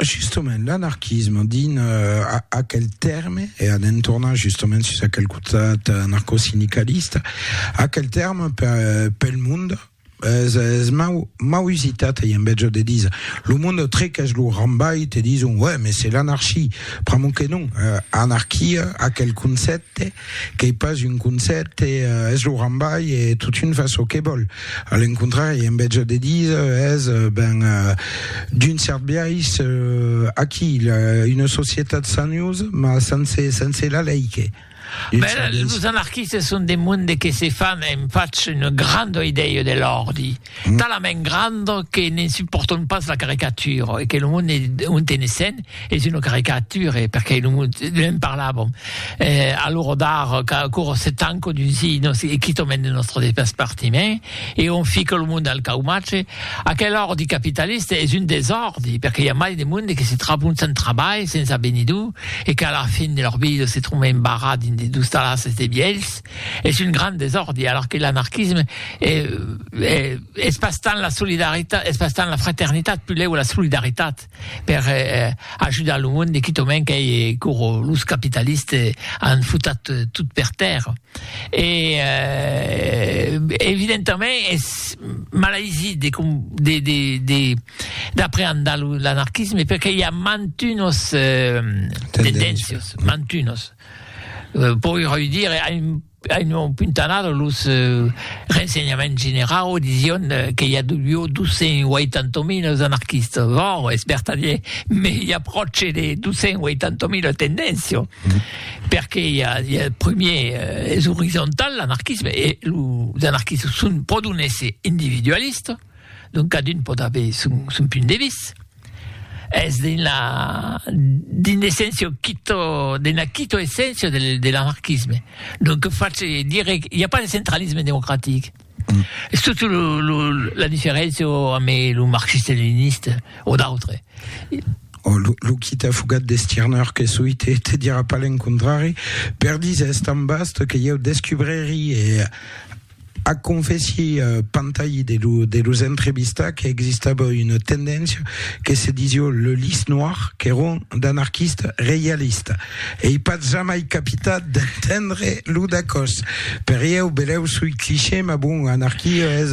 Justement, l'anarquisme, dins uh, aquel terme, e anem tornar justement sus aquel costat anarcosindicalista, aquel terme per, pel monde, es, es mau, mau usitat i en vètge de dir lo monde trequèch lo rambai te dison ouais mais c'est l'anarchie pr'amor que non uh, anarquia aquel concèpte Qu'ei pas un concèpte, es lo rambai e totun fa çò que vòl. A l'encontrari, en vètge de díser, es, ben, d'un cèrt biais, aquí, una societat saniosa, mas sense, sense la lei que. Bèla, los anarquistes son de monde que se fan, e'm fach una granda idèia de l'òrdi. talament grand que ne'n supportons pas la caricature e que lo monde on tenessen es una caricature perque lo monde ne'n parlàvem e alora d'ara qu'aquò se tanca dus i nos e quitament de nòstre despartiment e on fica lo monde al caumatge aquel òrdi capitalista es un desòrdi perque i a mai de monde que se trabon sens trabalh sens avenidor e qu'a la fin de lor vida se tromben barrats dins de dus talasses de vielhs es un grand desòrdi, alors que l'anarquisme es pas tant la solidaritat, es pas tant la fraternitat, pulèu la solidaritat per ajudar lo monde, quitament qu'ei coro los capitalistes an futat tot per tèrra. E evidentament es malaisit de de de de d'apreandar l'anarquisme perque i a mantunos tendéncias, mantunos. Poi reüdire a un a un nom puntanada los rensenhaments generau disión que i a duió 280.000 es anarquistas, vòu, es bertadier, me i a pròche de 280.000 tendéncio, perque i a i a prumier es orizontal l'anarquisme e los anarquistas son pòdon èsser individualistas, donc cadun pòt aver son son punt de vista. Es d'una d'un essencio quito d'una quito essencio de de l'anarquisme. Donc face dire i a pas de centralisme democratic. Es totu lo lo la diferencio ame lo marxiste leniniste o d'autre. O lo lo quita fugat de Stirner que soi te te dira pas l'encontrari per diser es tan vast que ieu descubreri e Ac confèssi Pantayi de lo de los entrevistats que existava una tendéncia que se disió le lys noir qu'èron d'anarquistes reialistes. Ei pas jamai capitat d'entendre lo dacòs. Per ieu, belèu soi cliché, mas bon, anarquia es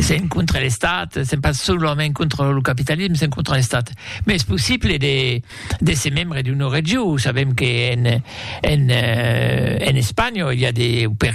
s'en contra l'estat s'en pas solament contra lo capitalisme s'en contra l'estat mais es possible de de se membre d'una regió sabem que en en euh, en Espanya il y a des per